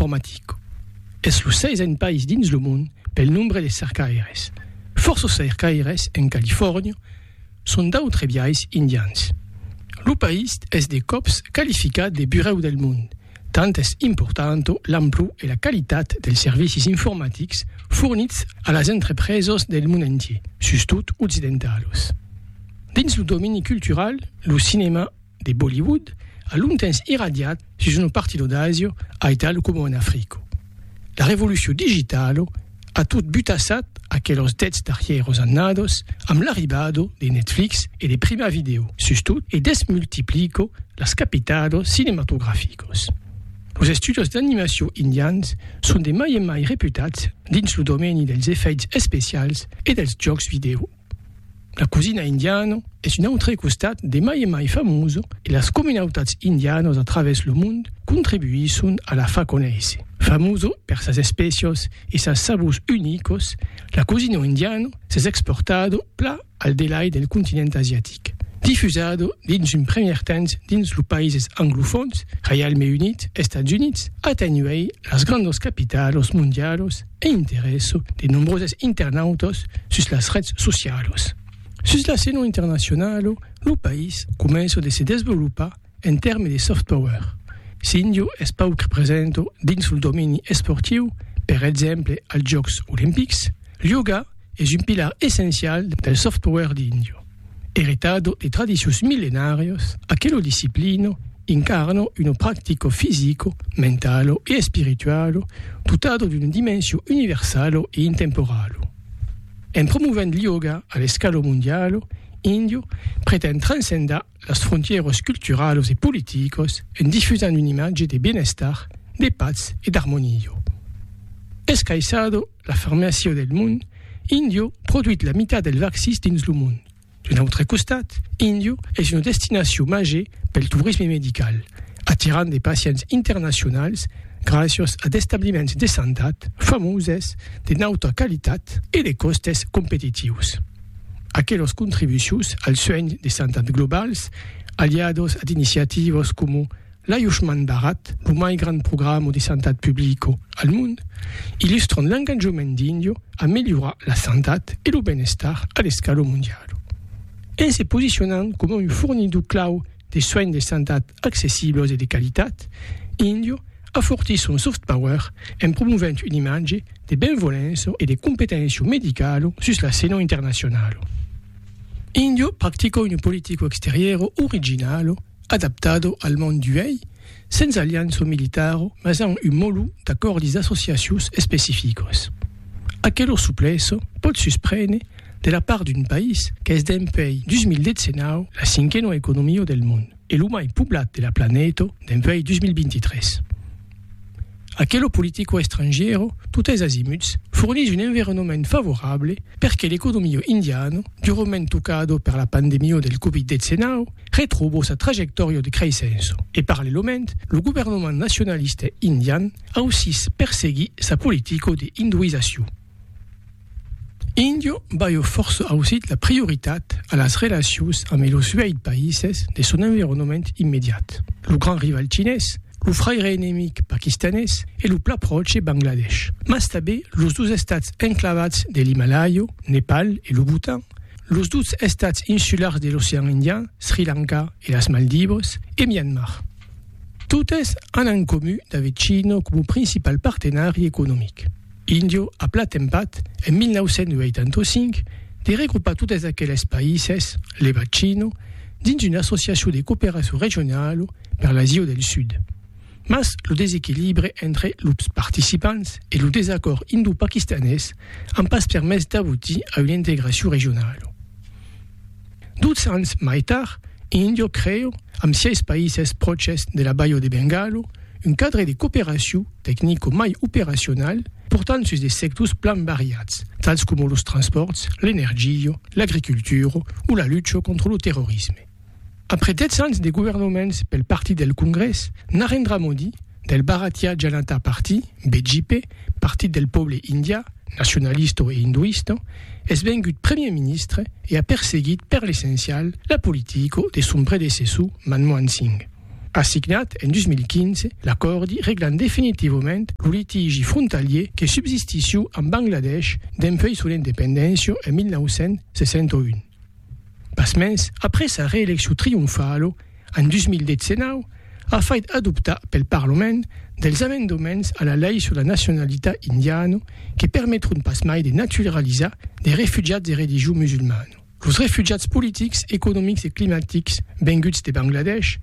Informatico es lo seisen país dins lo mond pel nombre de cercaires. Fòrça cercaires en Califòrnia son d'autres biais indians. Lo país es de còps qualificat de burèu del mond, tant es importanta l'amplor e la qualitat dels servicis informatics fornits a las entrepresas del mond entier, sustot occidentalos. Dins lo domeni cultural, lo cinèma, de Bollywood a longtemps irradiat sus una partida d'Asia a Italo coma en Africa. La revolucion digitala a tot butassat aquelas dètz darrièras annadas amb l'arribada de Netflix e de Prima Video, sustot, e desmultiplica las capitadas cinematograficas. Los estudios d'animacion indians son de mai en mai reputats dins lo domeni dels efèits especials e dels jòcs vidèo. La cosina indiana es un autre costat de mai en mai famosa e las comunautats indianas a travèrs lo mond contribuisson a la far conéisser. Famosa per sas espècias e sas sabors unicas, la cosina indiana s'es exportada pla al delai del continent asiatic. Difusada dins un premier temps dins lo païses anglofòns, Reialme Unit, Estats Units, atenhuèi las grandas capitalas mondialas, e interèsso de nombroses internautas sus las rets socialas. Sus l'escena internacionala, lo país comença de se desvolopar en tèrme de soft power. S'India es pauc presenta dins lo domeni esportiu, per exemple als Jòcs Olimpics, l'ioga es un pilar essencial del soft power d'India. Eritado de tradicions millenàrias, aquelo disciplino incarna una practica fisico, mentalo e espiritualo dotada d'una dimension universala e intemporala. En promovent l'ioga a l'escala mondiala, Indio pretend transcendar las frontièras culturalas e politicas en difusant una imatge de benestar, de patz e d'armonia. Escaissada, La fermesio del mond, Indio produit la mitat del vaccís dins lo mond. D'un autre costat, Indio es una destinacion màger pel torisme medical, atirant de pacients internacionals gràcias a d'establiments de santat famoses, de nauta qualitat e de còstes competitius. Aquelas contribucions al suènh de santat globals, aliadas a d'iniciativas coma L'Ayushman Bharat, lo mai grand programa de santat publica al mond, illustran l'enganjament d'Indio a melhorar la santat e lo ben-estar a l'escala mondiala. En se posicionant coma un fornidor clau de soins de santat accessiblos e de qualitat, Indio afortís son soft power en promovent una imatge de benvolença e de competéncia medicala sus la scena internacionala. Indio practica una politica exteriora originala, adaptado al mond d'uèi, sens alianç o militaro, mas amb un molu d'acòrdis d'associacions especificos. Aquelo supleço pòt susprene de la part d'un país qu'es dempuèi 2019 la cinquena economia del mond e lo mai poblat de la planeta dempuèi 2023. Aquelo politico estrangièro, totes azimuts, fornís un environament favorable perque l'economia indiana, durament tocado per la pandemia del Covid-19, Retrobo sa trajectòria de creissença e parallèlament lo governament nacionalista indian ausís perseguí sa politica de hinduizacion. Indio baieu fòrça ausit la prioritat a las relacions amé los uèit païses de son environament immediat, lo grand rival chinés, lo fraire enemic paquistanés e lo pla pròche Bangladesh, mas tabé los dos estats enclavats de l'Himalàia, Nepal e lo Bhutan, los dus estats insulars de l'Ocean Indian, Sri Lanka e las Maldivas, e Mianmar. Totes an en comu d'aver China coma principal partenari economic. Indio a platempat, en 1985, de regrupar totes aqueles païses, levat China, dins una associacion de cooperacion regionala per l'Asia del Sud. Mas lo desequilibre entre los participants e lo desacòrd indo-paquistanés an pas permés d'abotir a una integracion regionala. Doutz ans mai tard, India creu, amb sièis païses pròches de la Baia de Bengala, un cadre de cooperacion tecnico mai operacional portant sus de sectors plan variats, tals coma los transpòrts, l'energia, l'agricultura o la lucha contra lo terrorisme. Après 10 ans de governoments pel partit del Congrès, Narendra Modi, del Bharatiya Janata Party, BJP, Partit del Pòble Indià, nacionalista e hinduista, es vengut Premier Ministre e a perseguit per l'essencial la politica de son predecessor Manmohan Singh. A signat en 2015 l'acòrdi reglant definitivament lo litigi frontalier que subsistissiu amb Bangladesh dempuèi son independéncia en 1961. Pasmens, après sa reeleccion trionfala en 2019, a fait adoptar pel Parlament dels amendements a la lei sur la nacionalitat indiana que permetront pasmai de naturalizar de refugiats de religion musulmana. Los refugiats politics, economics e climatics venguts de Bangladesh,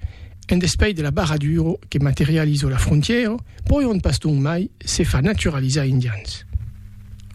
en despais de la barradura que materializa la frontièra, pòion pas donc mai se far naturalizar indians.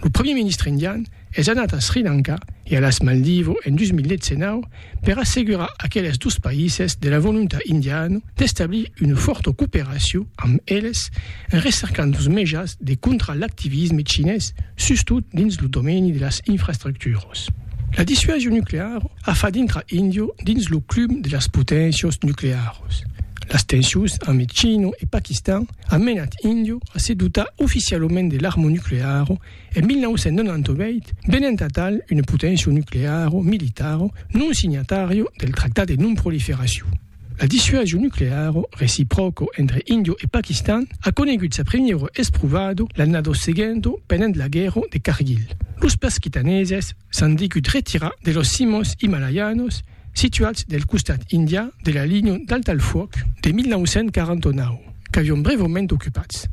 Lo Primièr Ministre indian, es anat a Sri Lanka e a las Maldivo en 2019 per assegurar aqueles dos païses de la volontat indiana d'establir una fòrta cooperacion amb eles en recercant dos mejans de contrar l'activisme chinés sustot dins lo domeni de las infrastructuras. La dissuasion nucleara a fach dintrar India dins lo club de las poténcias nuclearas. Las tensions amb China e Paquistan an menat India a se dotar oficialament de l'arma nucleara En 1998, venent atal una poténcia nucleara o militara non signatària del Tractat de Non-Proliferacion, la dissuasion nucleara recipròca entre Índia e Paquistan a conegut sa primièra esprovada l'annada seguenta pendent la guèrra de Kargil. Los paquitaneses s'an degut retirar de las cimas imalaianas situats del costat indià de la linha d'alta-al-fuòc de 1949, qu'avián brèvament ocupats.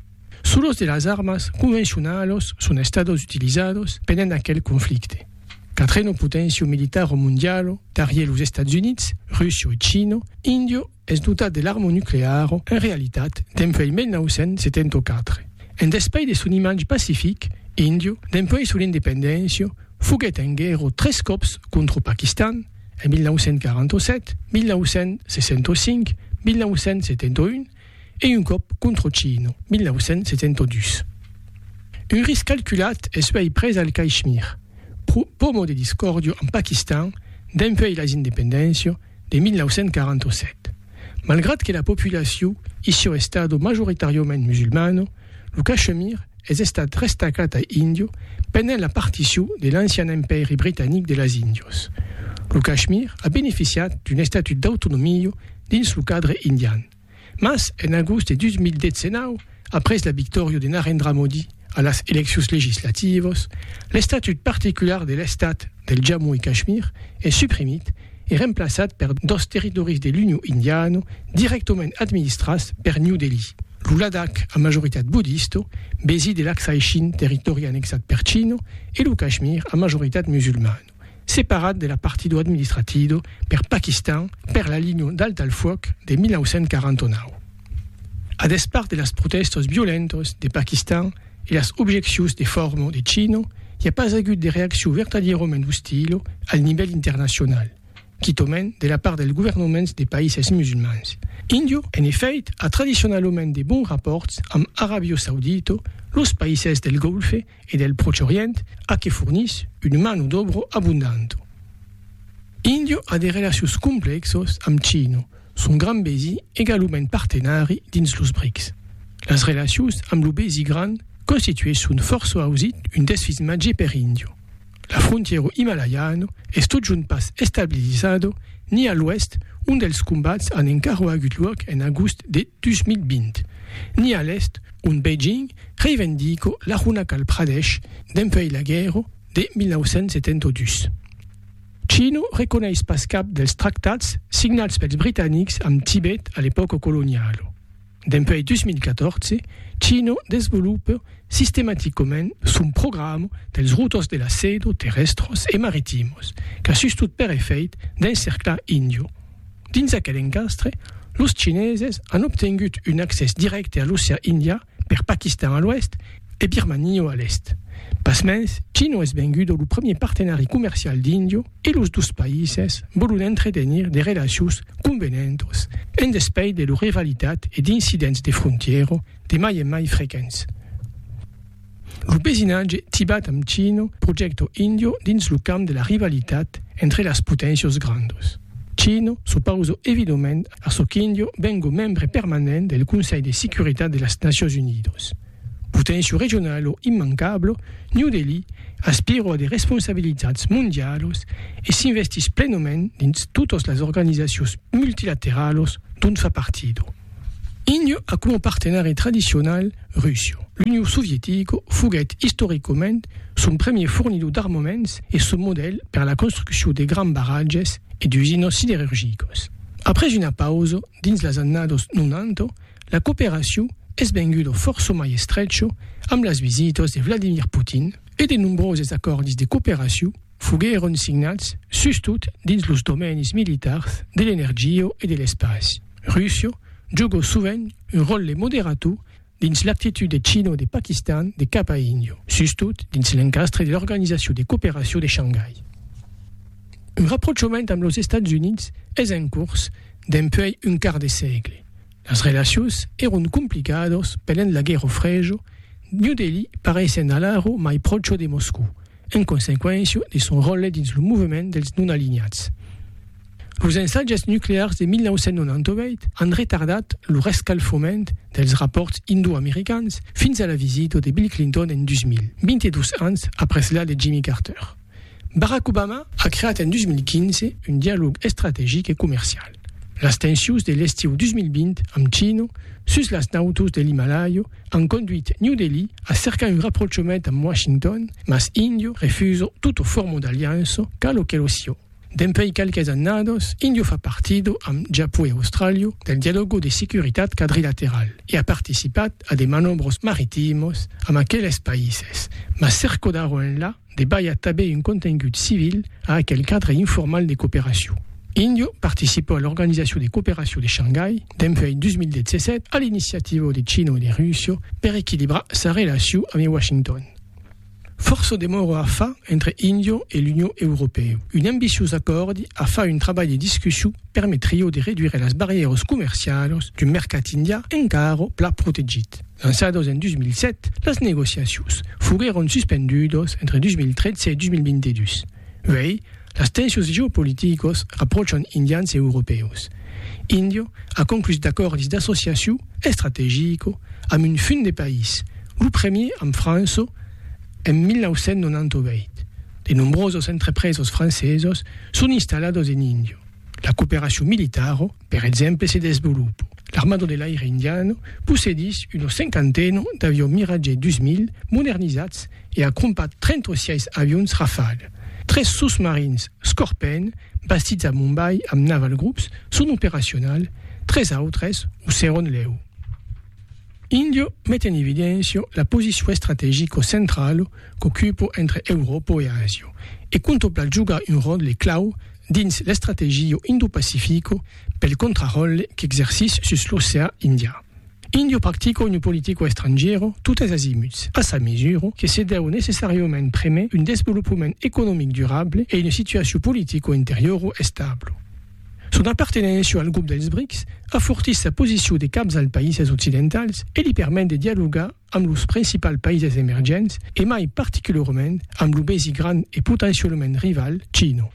Solos de las armas convencionalos son estados utilizados pendent aquel conflicte. Quatreno potencio militaro mondialo, darrier los Estats Units, Russia e China, Indio es dotat de l'arma nuclearo en realitat dempuèi 1974. En despais de son imatge pacific, Indio, dempuèi son independéncia, foguèt en guèrra tres còps contra Paquistan, en 1947, 1965, 1971, e un còp Controcino, 1972. Un risc calculat es uèi pres al Caishmir, pomo de discòrdio amb Paquistan dempuèi las independéncia de 1947, malgrat que la populaciu issiò estado majoritàriament musulmana, Lo Cachemir es estat restacat a Indio pendent la particiu de l'ancian empèri britanic de las Índios. Lo Cachemir a beneficiat d'un estatut d'autonomia dins lo cadre indian, mas en agost de 2019, après la victòria de Narendra Modi a las eleccions legislativas, l'estatut particular de l'estat, del Jammu e Kashmir es suprimit e remplaçat per dos territòris de l'Union Indiana dirèctament administrats per New Delhi, lo Ladakh a majoritat buddista, besi de l'Aksai Chin, territòri annexat per China, e lo Kashmir a majoritat musulmana, separat de la partida administratida per Pakistan per la linha d'alta al fuòc de 1949. A despart de las protèstas violentas de Pakistan, e las objeccions de forma de Chino, i a pas agut de reaccion vertadièrament ostila al nivèl internacional, quitament de la part dels governaments de païses musulmans. Índia, en efèit, a tradicionalament de bons rapòrts amb Aràbia Saudita, los païses del Golfe e del Pròche Orient, a que fornís una mano d'òbra abondanta. Índia a de relacions complèxas amb China, Son grand besi egalument partenari dins los brics. Las relacions amb lo besi grand constituesson fòrça ausit un desfís màger per Indio. La frontièro himalaiano es totjorn pas estabilizado ni a l'oèst ont dels combats an encara agut luòc en agost de 2020, ni a l'èst ont Beijing reivendico l'Arunachal Pradesh dempuèi la guèrra de 1972. Chino reconeis pas cap dels tractats signats pels britanics amb Tibet a l'epòca coloniala. Dempuèi 2014, Chino desvolopa sistematicament son programa dels routors de la seda terrèstros e maritimos qu'a sustot per efèit d'encerclar Indio. Dins aquel encastre, los chineses an obtengut un accès dirècte a l'ocean Indian per Paquistan a l'oèst e Birmania a l'èst. Pasmens, China es venguda lo premier partenari comercial d'Índia e los dos païses vòlon entretenir de relacions convenentas en despeit de lor rivalitat e d'incidents de frontièra de mai en mai frequents. Lo vesinatge Tibat amb China projècta Índia dins lo camp de la rivalitat entre las poténcias grandas. China s'opausa evidament Açò qu'Indio vengo membre permanent del Conselh de Securitat de las Nacions Unidos. Potencio regionalo immancablo, New Delhi aspiro a de responsabilitats mondialos e s'investís plenomènt dins totas las organizacions multilateralos dont fa partido. Indio a coma partenari tradicional Russia. L'Union Sovietica foguèt istoricament son premier fornidor d'armaments e son modèl per la construccion de grands barratges e d'usinas siderurgicas. Après una pausa dins las annados 90, la cooperacion es venguda fòrça mai estrecha amb las visitas de Vladimir Putin e de nombroses acòrdis de cooperacion foguèron signats sustot dins los domènis militars de l'energia e de l'espaci. Russia joga sovent un ròtle moderator dins l'actitud de China o de Paquistan de cap a Indio, sustot dins l'encastre de l'Organizacion de Cooperacion de Shangai. Un raprochament amb los Estats Units es en cors dempuèi un quart de sègle. Las relacions èron complicados pendent la Guerra Frejo, New Delhi pareissent alara mai pròcha de Moscou, en consequéncia de son ròtle dins lo movement dels non-alinhats. Los ensatges nuclears de 1998 an retardat lo rescalfament dels rapòrts indo-americans fins a la visita de Bill Clinton en 2000, 22 ans après la de Jimmy Carter. Barack Obama a creat en 2015 un dialòg estrategic e comercial. Las tensions de l'estiu 2020 amb China sus las nautas de l'Himalaya an conduit New Delhi a cercar un raprochament amb Washington, mas India refusa tota forma d'aliança, cal o que lo sieu. Dempèi qualques annados, Indio fa partido, amb Japó e Austràlia, del Dialogo de Securitat Quadrilateral e a participat a de manòbros maritimos amb aqueles païses, mas cercodaron enlà de balhar tabé un contengut civil a aquel cadre informal de cooperacion. Indio participa a l'Organizacion de Cooperacion de Shangai dempèi 2017 a l'iniciativa de China e de Russia per equilibrar sa relacion ame Washington. Fòrça demòra a far entre India e l'Union Europèu. Un ambiciós acòrdi a far un trabalh de discussion permetrió de reduire las barrièras comercialas d'un mercat indià encara pla protegit. Lançadas en 2007, las negociacions foguèron suspendudas entre 2013 e 2022. Uèi, las tensions geopoliticos rapròchan indians e europèus. Indio a conclús d'acòrdis d'associaciu estrategico amb un fum de país, lo premier amb Franço en 1998. De nombrosos entrepresos francesos son installados en Indio. La cooperacion militaro. Per exemple se desvolopo. L'armado de l'aire indiano possedís una cinquantena d'avions Mirage 2000 modernizats e a crompat 36 avions Rafale. Tres sosmarins Scorpèn bastits a Mumbai amb Naval Groups son operacionals, tres autres o seròn lèu. Indio met en evidéncia la posicion estrategica centrala qu'ocupa entre Euròpa e Asia e contempla jogar un ròtle clau dins l'Estrategio Indo-Pacifico pel contraròtle qu'exercís sus l'oceà Indià. Indio practica una politica estrangièra totes azimuts, a sa mesura que se deu necessàriament prémer un desvolopament economic durable e una situacion politica interiora establa. Son apartenéncia al grop dels BRICS afortís sa posicion de capzal païses occidentals e li permet de dialogar amb los principals païses emergents e mai particularament amb lo besi grand e potencialament rival China.